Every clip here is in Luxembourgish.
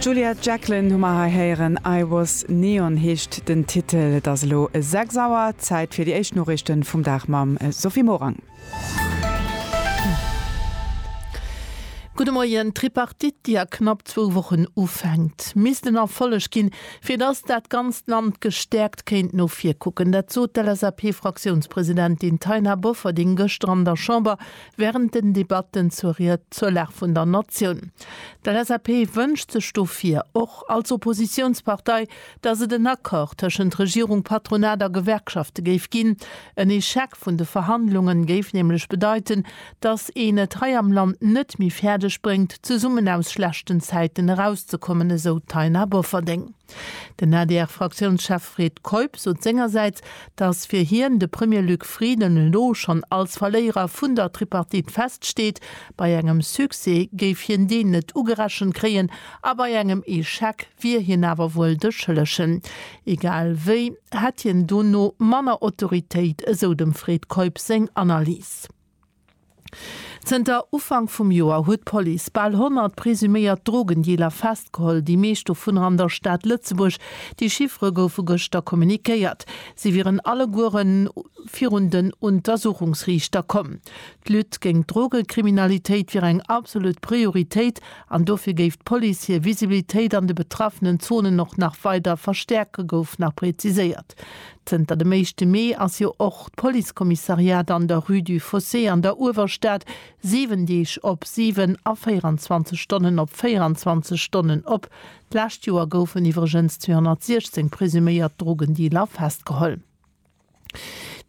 D'Juliet Jacklin hu mer hei héieren, I Was Neon heescht den Titel. Et ass elo 6 Auer, Zäit fir déi éischt Noriichten vum Dag mam Sophie Morang. Gudde Moien. D'Tripartite, déi a knapp zwou Wochen ufänkt, misst en Erfolleg ginn, fir datt dat ganzt Land gestäerkt kéint no vir kucken. Dat sot d'LSAP-Fraktiounspresidentin Taina Bofferding gëschter an der Chamber. Während den Debatten zur Ried zur Lag vun der Natioun. D'LSAP wënscht sech dofir, och als Oppositiounspartei, datt et en Accord tëschent Regierung, Patronat a Gewerkschafte géif ginn. En Echec vun de Verhandlungen géif nämlech bedeiten, datt een et hei am Land net méi fäerdeg bréngt, zesummen aus schlechten Zäiten erauszekommen, esou d'Taina Bofferding. Den ADR-Fraktiounschef Fred Keup sot sengersäits, datt fir hien de Premier Luc Frieden elo schonn als Verléierer vun der Tripartite feststeet. Bei engem Succès géif hien deen net ugerechent kréien a bei engem Echec wier hien awer wuel de Schëllegen. Egal wéi hätt hien dono manner Autoritéit, esou dem Fred Keup seng Analys. Zënter Ufank vum Joer huet d'Police bal 100 presuméiert Drogendealer festgeholl, déi meescht dovunner an der Stad Lëtzebuerg. Déi Chiffere goufe gëschter kommunikéiert. Si wieren alleguere virun den Untersuchungsriichter komm. D'Lutte géint d'Drogekriminalitéit wier eng absolut Prioritéit an dofir géif d'Police hir Visibilitéit an de betraffenen Zonen och nach weider verstäerken, gouf nach preziséiert. Zënter dem éischte Mee ass jo och d'Policekommissariat an der Rue du Fossé an der Uewerstad 7 Deeg op 7 a 24 Stonnen op 24 Stonnen op. D'lescht Joer goufen iwwregens 216 presuméiert Drogendealer festgeholl.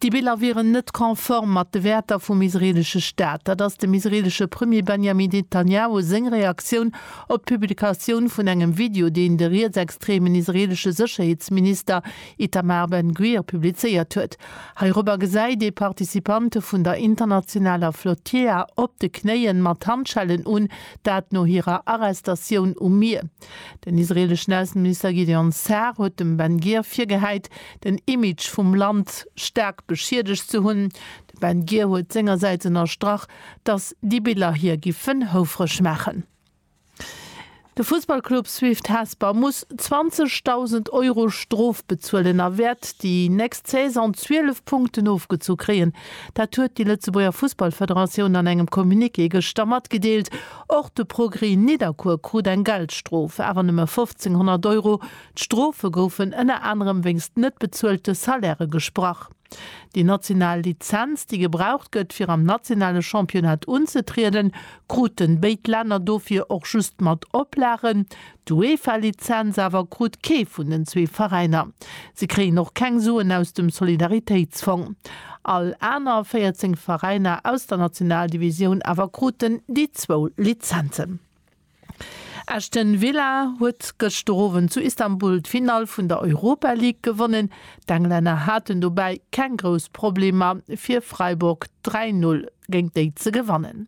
Déi Biller wieren net konform mat de Wäerter vum israeelesche Staat. Dat ass dem israeelesche Premier Benjamin Netanjahu seng Reaktioun op d'Publikatioun vun engem Video, deen de rietsextremen israeelesche Sécherheetsminister Itamar Ben Gvir publizéiert huet. Heirobber gesäit ee Participante vun der internationaler Flotilla op de Knéien mat Handschellen un, dat no hirer Arrestatioun um Mier. Den israeleschen Ausseminister Gideon Sa'ar huet dem Ben Gvir virgehäit, den Image vum Land staark beschiedegt ze hunn. De Ben Gvir huet sengersäits ënnerstrach, datt déi Biller hie giffen houfreg maachen. De Fussballclub Swift Hesper muss 20.000 Euro Strof bezuelen a wäert déi nächst Saison 12 Punkten ofgezu kréien. Dat huet déi Lëtzebuerger Fussballfederatioun an engem Communiqué gëschter matgedeelt. Och de Progrès Nidderkuer krut eng Geldstrof, awer nëmme 1.500 Euro. D'Strofe goufen ënner anerem wéinst net bezuelte Salairë gesprach. Déi national Lizenz, déi gebraucht gëtt, fir am nationale Championnat unzetrieden, kruten béid Länner dofir och just mat Oplagen. D'UEFA-Lizenz awer krut kee vun den zwee Veräiner. Si kréien och keng Suen aus dem Solidaritéitsfong. All aner 14 Veräiner aus der Nationaldivisioun awer kruten déi zwou Lizenzen. Aston Villa huet gëschter Owend zu Istanbul d'Finall vun der Europa League gewonnen. D'Englänner haten dobäi keng grouss Problemer fir Freiburg 3, 0 géint déi ze gewannen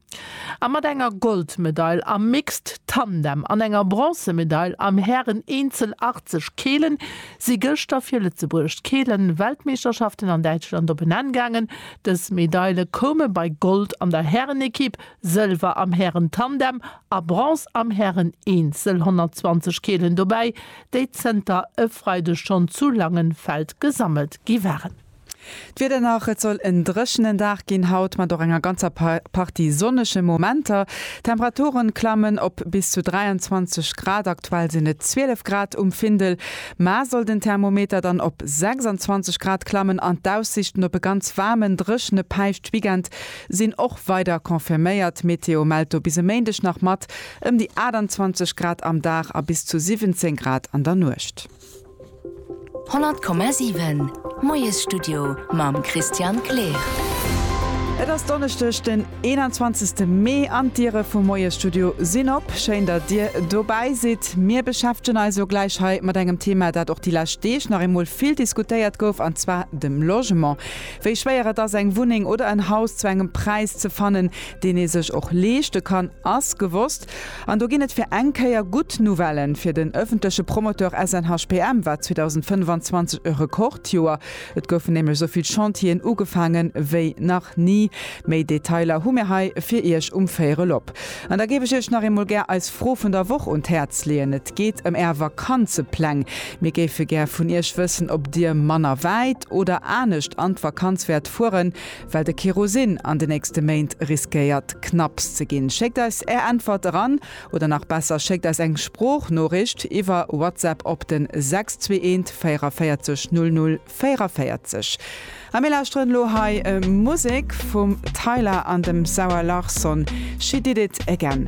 a mat enger Goldmedail am Mixed Tandem an enger Bronzemedail am Hären Eenzel 80 Keelen si gëschter fir Lëtzebuerg d'Keelen Weltmeeschterschaften an Däitschland op en Enn gaangen. Dës Medaile koume bei Gold an der Härenekipp, Sëlwer am Hären-Tandem a Bronze am Hären-Eenzel 120 Keelen dobäi, déi zënter e Freideg schonn zu Langenfeld gesammelt gi waren. D'Wieder nach, Et soll en dréchenen Dag ginn haut, mat och enger ganzer Partie sonnege Momenter. D'Temperature klammen op bis zu 23 Grad, aktuell sinn et 12 Grad um Findel. Mar soll den Thermometer dann op 26 Grad klammen an d'Aussiichten op e ganz waarmen, dréchene Päischtweekend Sinn och weider confirméiert. D'Meteo mellt do bis e Méindeg nach mat ëm déi 28 Grad am Dag a bis zu 17 Grad an der Nuecht. 100,7 Moiesstudio mam Christian Kleer. Et ass Donneschdeg den 21 Mee an d'Diere vum Moiesstudio sinn op. Schéin datt Dir dobäi sidd. Mir beschäftegen eis elo gläich hei mat engem Thema dat och déi lescht Deeg nach eemol vill diskutéiert gouf an zwar dem Logement. Wéi schwéier et ass eng Wunneng oder en Haus zu engem Präis ze fannen, deen ee sech och leeschte kann, ass gewosst. An do ginn et fir eng Kéier gutt Nouvellen fir den ëffentleche Promoteur SNHPM war 2025 e Rekordjoer. Et goufen nämlech esou vill Chantieren ugefaange wéi nach ni. Méi Detailer hu mir hei fir Iech um Véierel op. An da géif ech Iech nach eemol gär eis Fro vun der Woch un d'Häerz leeën. Et geet ëm Är Vakanzepläng. Mir géife gär vun Iech wëssen, ob Dir manner wäit oder anescht an d'Vakanz wäert fueren, well de Kerosin an de nächste Méint riskéiert knapps ze ginn. Schéckt eis Är Äntwert eran, oder nach besser, schéckt eis eng Sproochnoricht iwwer WhatsApp op den 621 44 00 44. A mir lauschteren elo hei Musek vum Tyla an dem Zara Larsson, She Did It Again.